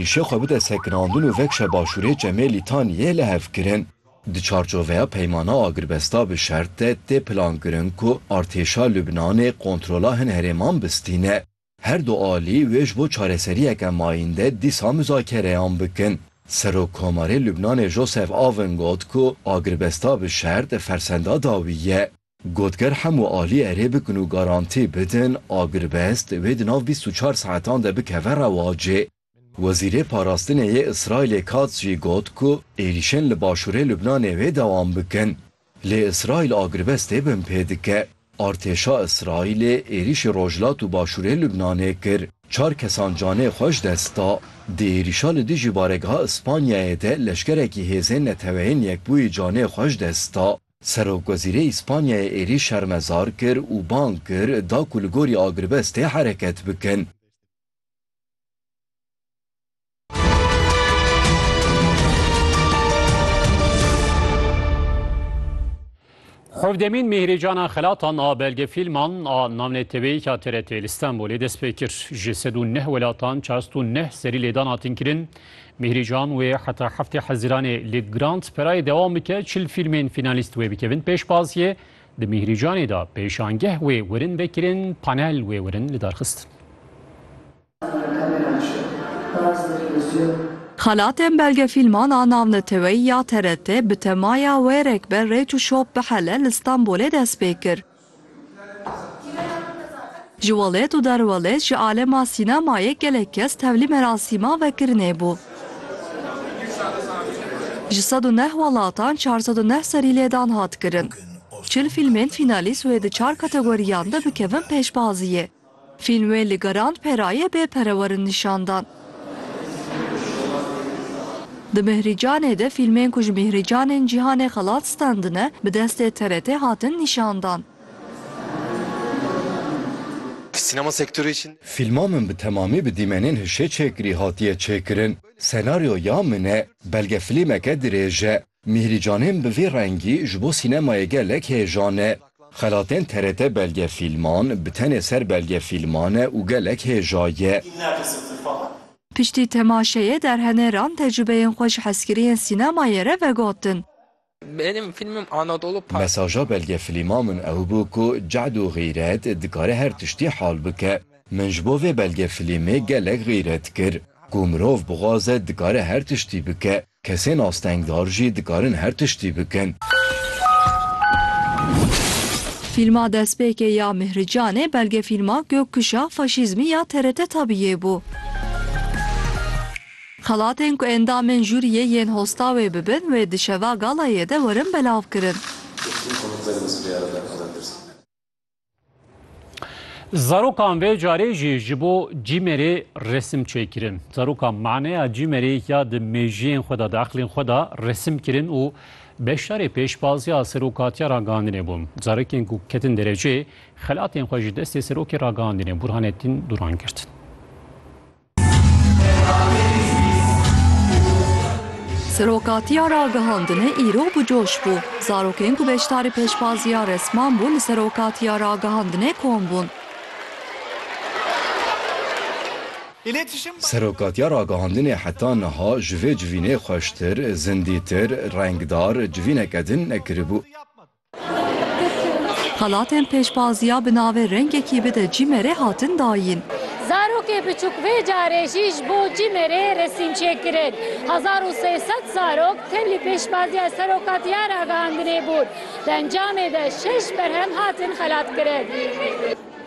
Îşê xwe bide sekinandin û vekşe başûrê Çemê Lîtaniyê li hev kirin. Di çarçoveya peymana agirbesta bi şert de tê plankirin ku artêşa Lubnanê kontrola hin herêman bistîne. Her du alî wê ji bo çareseriyeke mayînde dîsa muzakereyan bikin. Serokkomarê Lubnanê Joseph Aoun got ku agirbesta bi şert fersenda dawî ye. Got ger hemû alî erê bikin û garantî bidin agirbest wê di nav bîst û çar saetan de bikeve rewacê. Wezîrê Parastinê yê Îsraîlê Katz jî got ku êrîşên li başûrê Lubnanê wê dewam bikin. Lê Îsraîl agirbestê bin pê dike. Artêşa Îsraîlê êrîşî rojhilat û başûrê Lubnanê kir. Çar kesan canê xwe ji dest da. Di êrîşa li dijî baregeha Îspanyayê de leşkerekî hêzên neteweyên Yekbûyî canê xwe ji dest da. Serokwezîrê Îspanyayê êrîş şermezar kir û bang kir da ku li gorî agirvestê hereket bikin. Hevdemîn Mîhrîcana Xelatan a Belgefîlman a navneteweyî ya TRT'ê li Stenbolê dest pê kir. Ji sed û neh welatan çar sed û neh serî lêdan hatin kirin. Mîhrî Can wê heta heftê Hezîranê li Grant perayê dewam bike, çil fîlmên fînalîst wê bikevin pêşbaziyê. Di Mîhrî Canê de pêşangeh wê werin vekirin, panel wê werin lidarxistin. Xelatên belgefîlman a navneteweyî ya TRT bi temaya Wêrek be rêç û şop bihele li Stenbolê dest pê kir. Ji Welet û Derwelet ji alema sînemayê gelek kes tevlî merasîma vekirinê bû. Ji sed û neh welatan çar sed û neh serî lêdan hat kirin. Çil fîlmên fînalîst wê di çar kategoriyan de bikevin pêşbaziyê. Fîlmê li Garand Perayê bê pere werin nîşan dan. Di Mihricanê de fîlmên ku ji Mihricanên cîhanê xelat stendine bi destê TRT'ê hatin nîşan dan. Sînema sektorê için. Fîlma min bi temamî bi dîmenên hişê çêkirî hatiye çêkirin. Senaryoya min e. Belgefilîmeke dirêj e. Mîhrî Canên bi vî rengî ji bo sînemayê gelek hêjan e. Xelatên TRT belgefîlman bi tenê ser belgefîlman e û gelek hêja ye. Piştî temaşeyê derheneran tecrubeyên xwe ji hezkiriyên sînemayê re vegotin. Mesaja belgefîlma min ew bû ku cehd û xîret dikare her tiştî hal bike. Min ji bo vê belgefîlmê gelek xîret kir. Ku mirov bixwaze dikare her tiştî bike. Kesên astengdar jî dikarin her tiştî bikin. Fîlma Destpêkê ya Mihri Canê belgefîlma Gökkuşağı Faşîzmi ya TRT Tabiiyê bû. Xelatên ku endamên jûriyê yên hosta wê bibin wê di şeva galayê de werin belavkirin. Zarokan vê carê jî ji bo cîmerê resim çêkirin. Zarokan maneya cîmerê ya di mêjiyên xwe de, di eqlên xwe de resim kirin û beşdarê pêşbaziya serokatiya ragihandinê bûn. Zarokên ku ketin derecê, xelatên xwe ji destê serokê ragihandinê Burhanettin Duran girtin. Serokatiya ragihandinê îro bi coş bû. Zarokên ku beşdarî pêşvaziya resman bûn li Serokatiya Ragihandinê kom bûn. Serokatiya Ragihandinê heta niha ji vê civînê xweştir, zindîtir, rengdar civîneke din nekiribû. Xelatên pêşbaziya bi navê Rengekî bide Cîmerê hatin dayîn. Zarokê biçûk vê carê jî ji bo Cîmerê resîm çêkirin. Hezar û sê sed zarok tevlî pêşbaziya serokatiya ragihandinê bûn. Di encamê de şeş berhem hatin xelatkirin.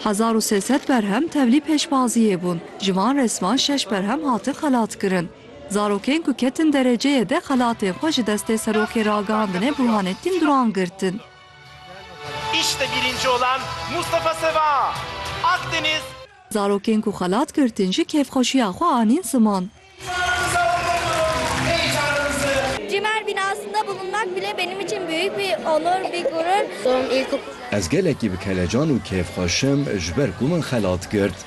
Hezar û sê sed berhem tevlî pêşbaziyê bûn. Ji van resman şeş berhem hatin xelatkirin. Zarokên ku ketin dereceyê de xelatên xwe ji destê serokê ragihandine Burhanettin Duran girtin. İşte birinci olan Mustafa Seva, Akdeniz. Zarokên ku xelat girtin jî kêfxweşiya xwe anîn ziman. Ji me bin aslında bulunmak bile benim için büyük bir onur, bir gurur. Ez gelekî bi kelecan û kêfxweş im ji ber ku min xelat girt.